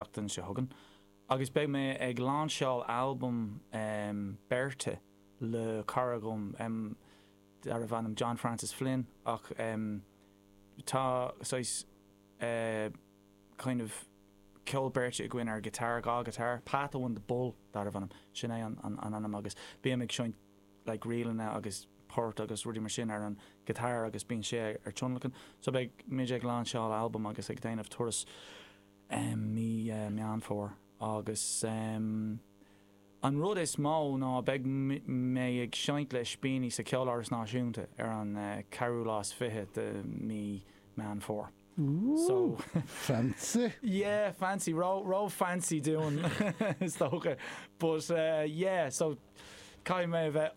tseachtain seo chugainn agus beidh mé ag lainseáil albam beirte le cara dom darb ainm John Francis Flynn ach tá saghas kind of ceol beirte againn ar ghiotáir, dhá ghiotár, Pat Eoin the Bull darb ainm, sin é an ainm agus bím ag seinnt like ríleanna agus poirt agus rudaí mar sin ar an ghiotár agus bíonn sé ar tionlacan so beidh muid ag lainseáil albam agus ag déanamh turas i mí Meán Fómhair agus an rud is mó ná beidh mé ag seinnt le Ispíní sa Cheoláras Náisiúnta ar an ceathrú lá is fiche de mí Meán Fómhair. Woo! Fancy! Yeah, fancy, ró-fancy dúinn is dócha but yeah, so caithfidh mé a bheith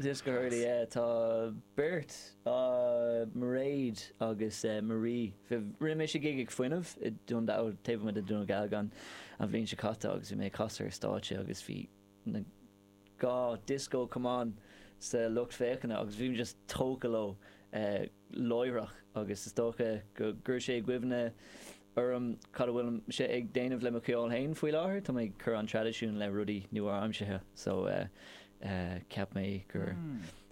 Disco Hurley. Tá beirt, Mairéad agus Marie, rinne mise gig ag Fuinneamh i Dundalk, taobh amuigh de Dhún Dealgan, an bhliain seo caite agus bhí mé ag casadh ar stáitse agus bhí na dhá disco camán sa lucht féachana agus bhí mé just tógtha leo. láithreach agus is dócha gur chuir sé i gcuimhne orm cad a bhfuil mise ag déanamh le mo cheol féin faoi láthair. Tá mé ag cur an traidisiúin le rudaí nua-aimseartha so cheap mé gur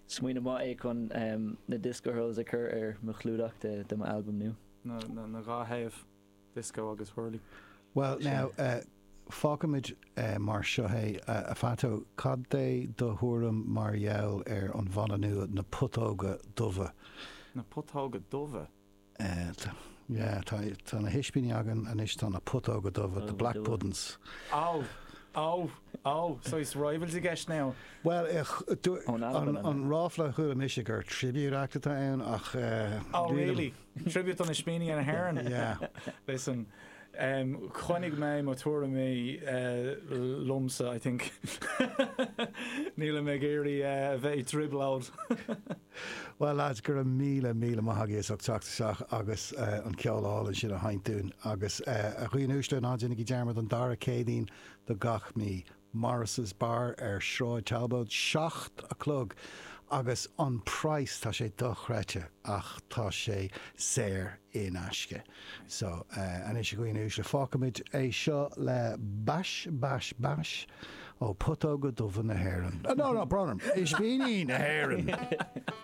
smaoineamh maith é chun na Disco Hurls a chur ar mo chlúdach de mo albam nua. Na dhá thaobh. Disco agus Hurley. Bhuel, now, fágfaimid mar seo é. A Phato, cad é do thuairim mar gheall ar an mbanna nua, Na Putóga Dubha? Na Putóga Dubha? Yeah, tá na hispíní againn anois, tá na Putóga Dubha, The Black Puddin's. Oh, oh, oh, so is rivals i gceist now? Bhuel, an ráfla a chuala mise gur tribute act atá ann ach. Oh, really? Tribute an Ispíní na hÉireann. Listen, em, coinneoidh mé mo tuairimí liomsa, I think. Nílim ag iarraidh a bheith i dtrioblóid. Bhuel lads, go raibh míle, míle maith agaibh as ucht teacht isteach agus an ceol álainn sin a sheinnt dúinn. Agus a dhaoine uaisle, ná déanaigí dearmad an dara Céadaoin de gach mí. Morris's Bar ar Shráid Talbóid, seacht a chlog, agus an praghas, tá sé dochreidte, ach tá sé saor in aisce. So, anois a dhaoine uaisle, fágfaimid é seo le Bás, Bás, Bás ó Putóga Dubha na hÉireann. No, no, brón orm, Ispíní na hÉireann!